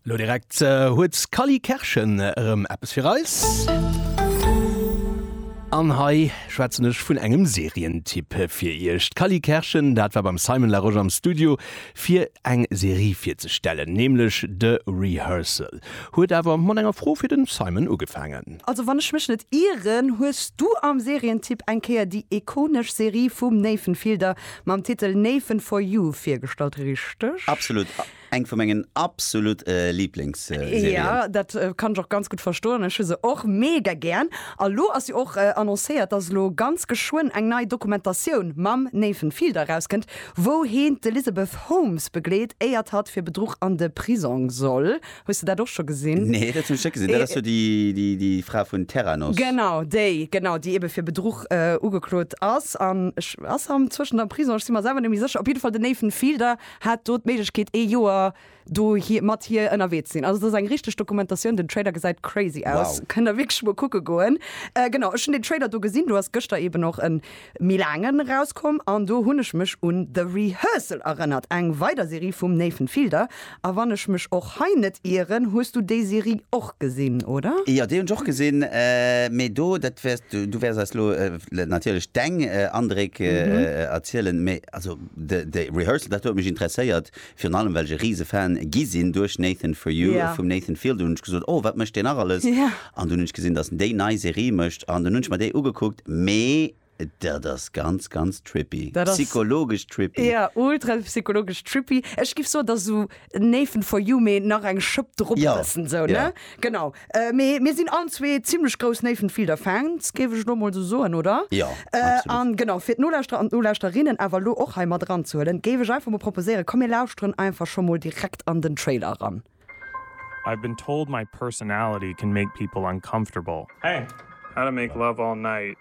Lo direkt huet d'Cally Kerschen erëm eppes fir eis. An hei schwätzen ech vun engem Serientipp fir iech. D'Cally Kerschen, dat war beim Simon Larosche am Studio fir eng Serie virzestellen, nämlech The Rehearsal. Huet awer mat enger Fro fir de Simon ugefaangen. Also wann ech mech net ieren, hues du am Serientipp eng Kéier déi ikonesch Serie vum Nathan Fielder Mam Titel Néiffen for you virgestallt, richteg? Absolut, eng vu mengen absolut Lieblingsserien. Jo, dat kann ech och ganz gutt verstoen, ech hu se och mega gären. A lo ass jo och annoncéiert, dass elo ganz geschwënn eng nei Dokumentatioun mam Nathan Fielder erauskënnt, wou heen d'Elizabeth Holmes begleet, éiert hatt fir Bedruch an de Prisong soll. Hues de dat och scho gesinn? Nee, dat hunn ech net gesinn. Dat ass jo déi, déi, déi Fra vun Theranos. Genau déi, genau, déi ebe fir Bedruch ugeklot ass. An ech, ass am zwëschent am Prisong? Ech si mer selwer net méi sécher. Op jidde Fall den Nathan Fielder hat do d'Méiglechkeet ee Joer do hir, mat hir ënnerwee ze sinn. Also et ass eng richteg Dokumentatioun. Den Trailer gesäit crazy aus. Wow. Kënnt der wierklech mol kucke goen. Genau, ech hunn den Trailer do gesinn. Do ass gëschter eben och en. méi laangen erauskomm an do hunn ech mech un The Rehearsal erënnert, eng weider Serie vum Nathan Fielder. A wann ech mech och hei net ieren, hues du déi Serie och gesinn, oder? Jo, déi hunn ech och gesinn, mee do, dat wäers du, du wäers eis elo natierlech deng Andréck erzielen, mee also The Rehearsal, dat huet mech interesséiert, Virun allem well ech e riese Fan gi sinn duerch Nathan For You yeah. vum Nathan Fielder, hunn ech gesot, oh wat mécht deen nach alles? Yeah. An dunn hunn ech gesinn, dass en déi nei Serie mécht an dunn hunn ech mer déi ugekuckt, mee dat ass ganz ganz trippy, psychologesch trippy. Ja, ultra psychologesch trippy. Ech giff soen, dass esou Nathan For You, mee nach eng Schëpp drop setzen, yeah. esou, ne? Yeah. Genau. Mee mir sinn allen zwee zimmlech grouss Nathan Fielder Fans, géif ech elo mol esou soen, oder? Jo, absolut. An genau, fir d'Nolauschterer an d'Nolauschterinnen awer elo och hei mat eranzehuelen, géif ech einfach mol proposéieren, komm mir lauschteren einfach scho mol direkt an den Trailer eran. I've been told my personality can make people uncomfortable. Hey, how to make love all night.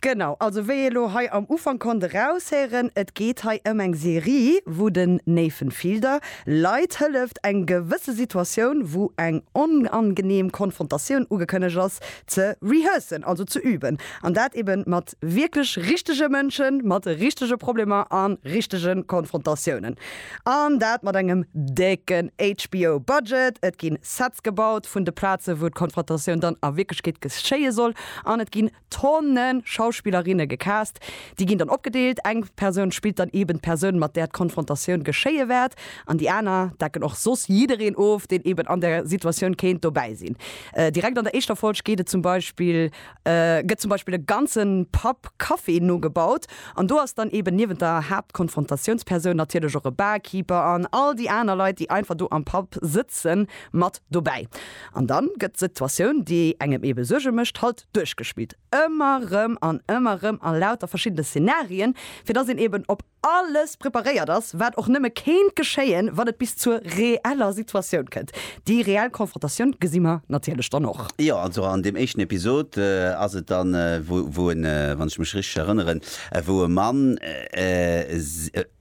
Genau, also wéi ee lo hei am Ufank konnt eraushéieren, et geet hei ëm eng Serie, wou den Nathan Fielder Leit hëlleft, eng gewësse Situatioun, wou eng onangenehm Konfrontatioun ugekënnegt ass, ze rehearsen, also ze üben. An dat ebe mat wierklech richtege Mënschen, mat richtege Problemer a richtege Konfrontatiounen. An dat mat engem décken HBO-Budget. Et gi Sets gebaut vun de Plazen, wou d'Konfrontatioun dann a Wierklechkeet geschéie soll, an et gi Tonne Schauspillerinne gecast. Déi ginn dann opgedeelt, eng Persoun spillt dann eeben d'Persoun, mat där d'Konfrontatioun geschéie wäert, an déi aner decken och soss jiddereen of, deen eeben an der Situatioun kéint dobäi sinn. Direkt an der éischter Folg geet et zum Beispill, gëtt zum Beispill e ganze Pub Café nogebaut, an do ass dann eeben niewent der Haaptkonfrontatiounspersoun natierlech och e Barkeeper an all déi aner Leit, déi einfach do am Pub sëtzen, mat dobäi. An dann gëtt d'Situatioun, déi engem eebe Suerge mécht, halt duerchgespillt, ëmmer rëm an ëmmer rëm a lauter verschiddene Szenarien, fir dass een eben op alles preparéiert ass, wat och nëmme kéint geschéien, wann et bis zur reeller Situatioun kënnt. Déi reell Konfrontatioun gesi mer natierlech dann och. Jo, also an deem éischten Episod ass et dann, wou, wou e, wann ech mech richteg erënneren, wou e Mann,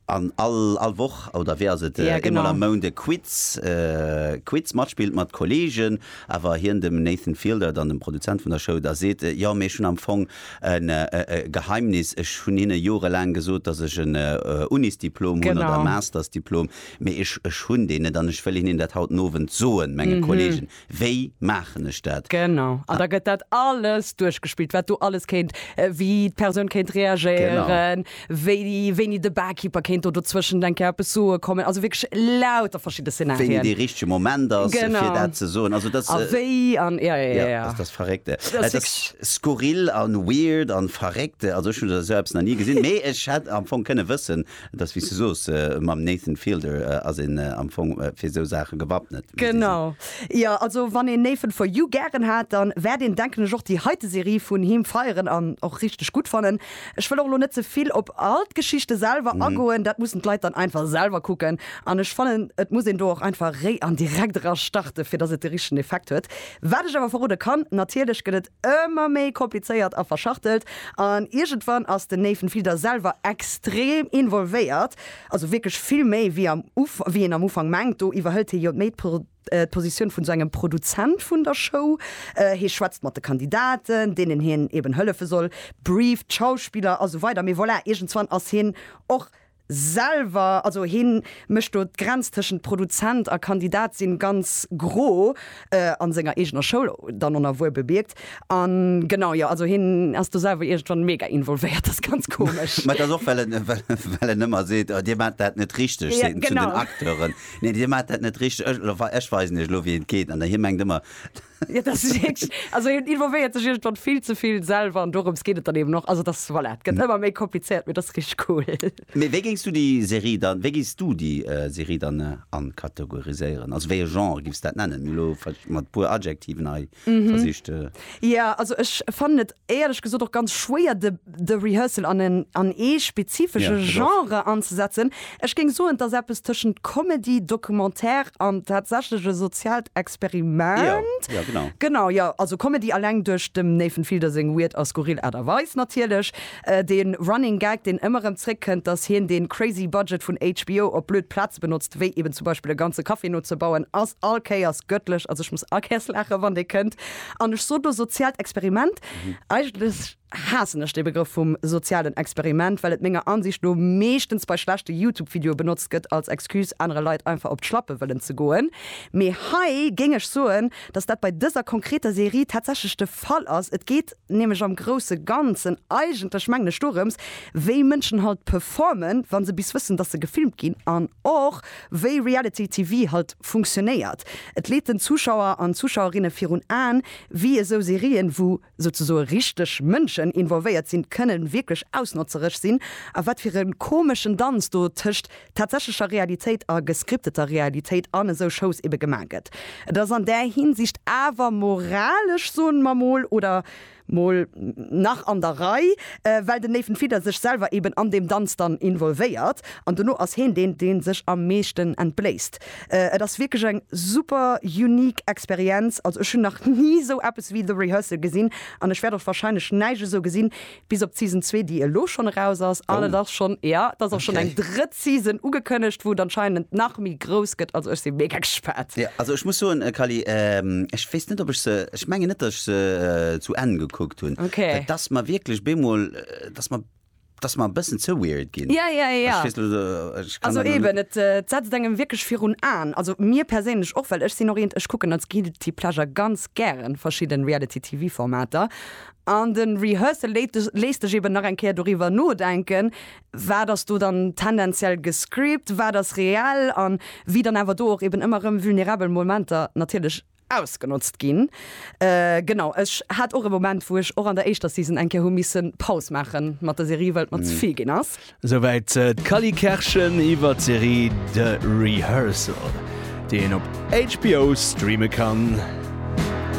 An all all Woch, oder wéi ass et, Ja, eemol am genau. Mount e Quiz, Quiz matspillt mat Kolleegen, awer hien dem Nathan Fielder, dann dem Produzent vun der Show, da seet, Jo, mee ech hunn am Fong en e Geheimnis, ech hunn hinne jorelaang gesot, datt ech en Unisdiplom hunn oder e Genau. Mastersdiplom, mee ech ech hunn deen net an ech wëll hinnen dat haut den Owend soen, menge Kolleegen. Wéi maachen ech dat? Genau, an da gëtt dat alles duerchgespillt, wat do alles kéint, wéi d'Persoun kéint reagéieren, wéini de Barkeeper kéint do dozwëschent eng Kéier eppes soe kommen, also wierklech lauter verschidde Szenarien. Wéini dee richtege Moment ass, fir dat ze soen. A wéi an, ja, ja, ja. Dat ass verréckt. Dat ass skurril a weird a verréckt. Also ech hunn esou eppes nach ni gesinn, mee ech hätt am Fong kënne wëssen, Et ass wéi s du soos, mam Nathan Fielder ass een am Fong fir esou Saache gewappnet. Genau, jo. Also wann een Nathan For You gären hat, dann wäert een denken ech och déi heite Serie vun him feieren an och richteg gutt fannen. Ech wëll och elo net ze vill op all d'Geschichte selwer agoen, dat mussen d'Leit dann einfach selwer kucken an ech fannen et muss een do och einfach réi an direkt era starte fir dass et de richtegen Effekt huet. Wat ech awer verrode kann, natierlech gëtt et Ëmmer méi komplizéiert a verschachtelt. An iergendwann ass den Nathan Fielder selwer extrem involvéiert, also wierklech vill méi wéi am Uf, wéi een am Ufank mengt. Do iwwerhëlt hie jo méi d'Pro, d'Positioun vun esou engem Produzent vun der Show. Hie schwätzt mat de Kandidaten, deenen hien eben hëllefe soll, brieft d'Schauspiller a sou weider. Mee voilà, iergendzwann ass hien och selwer, also hien mécht do d'Grenz tëschent Produzent a Kandidat sinn ganz gro, an senger eegener Schoul dann onerwuer bemierkt, an genau, jo, also hien ass do selwer iergendwann mega involvéiert, ass ganz komesch. Mä et ass och well en, well en ëmmer seet, oh, dir maacht dat net richteg, seet en zu den Acteuren, nee, dir maacht dat net richteg, ech weisen iech elo wéi et geet, an hie mengt ëmmer, Ja, dat ass wierklech, also hien involvéiert sech iergendwann vill ze vill selwer an dorëms geet et dann eben och. Also et ass, voilà, et gëtt ëmmer méi komplizéiert, mee dat ass richteg cool. Mee wéi géings du déi Serie dann, wéi géiss du déi Serie dann ankategoriséieren? Also wéi e Genre giffs dat nennen? Elo mat e puer Adjektiven hei versicht. Jo, also ech fannen et éierlech gesot och ganz schwéier de de Rehearsal an en an ee spezifesche Ja, dat ass. Genre anzesetzen. Ech géing soen, et ass eppes tëschent Comedy, Documentaire an tatsächleche sozialt Ja, Experiment. ja genau. Genau, jo, also Comedy alleng duerch dem Nathan Fielder seng weird a skurril Aart a Weis natierlech. De Running Gag, deen ëmmer erëm zréckkënnt, dass hien dee crazy Budget vun HBO op blöd Plaze benotzt, wéi eben zum Beispill e ganze Café nozebauen, ass all Kéiers gëttlech. Also ech muss all Kéiers laachen, wann dee kënnt. An ech sot elo soziaalt Experiment. Eigentlech haassen ech dee Begrëff vum sozialen Experiment, well et menger Ansicht no meeschtens bei schlechte YouTube-Videoe benotzt gëtt als Excuse, anere Leit einfach op d'Schlappe wëllen ze goen. Mee hei géing ech soen, dass dat bei dëser konkreter Serie tatsächlech de Fall ass. Et geet nämlech am grousse Ganzen eigentlech, mengen ech, dorëms, wéi Mënschen halt performen, wa se bis wëssen, dass se gefilmt ginn, an och, wéi Reality TV halt funktionéiert, et leet den Zuschauer an Zuschauerinne virun Aen, wéi esou Serien, wou souzesoe richteg Mënschen involvéiert sinn, kënnen wierklech ausnotzereg sinn a wat fir e komeschen Danz do tëscht tatsächlecher Realitéit a gescripteter Realitéit an esou Shows ebe gemaach gëtt. Et ass an där Hinsicht awer moralesch, soen mer mol, oder? mol nach an der Rei, well den Nathan Fielder sech selwer eben an deem Danz dann involvéiert an dono ass heen deen deen sech am meeschten entbléisst. Et ass wierklech eng super unique Experienz, also ech hunn nach ni esou eppes wéi The Rehearsal gesinn an ech wäert och wahrscheinlech näischt esou gesinn bis op d'Season zwee déi elo schonn eraus ass an et ass schonn, jo et ass och schonn eng drëtt Season ugekënnegt, wou et anscheinend nach méi grouss gëtt. Also ech si mega gespaant. Jo, also ech muss soen, Kally, ech weess net, ob ech se, ech mengen net, datt ech se zu Enn gekuckt hunn. Okay. Et ass mer wierklech bemol, et ass mer, et ass mer e bëssen ze weird ginn. Ja, ja, ja. Ech weess net, ech kann dat elo. Also eben, et setzt engem wierklech virun Aen. Also mir perséinlech och, well ech sinn och eent, ech kucken als guilty pleasure ganz gären verschidden Reality TV Formater. An den Rehearsal léit dech, léisst dech eben nach eng Kéier doriwwer nodenken. wat ass do dann tendenziell gescript, wat ass reell an wéi dann awer do och eben ëmmer erëm vulnerabel Momenter natierlech ausgenotzt ginn. Genau, ech hat och e Moment, wou ech och an der éischter Season eng Kéier hu missen Paus maache mat der Serie, well et mer ze vill ginn ass. Souwäit d'Cally Kerschen iwwer d'Serie The Rehearsal, déi een op HBO streame kann.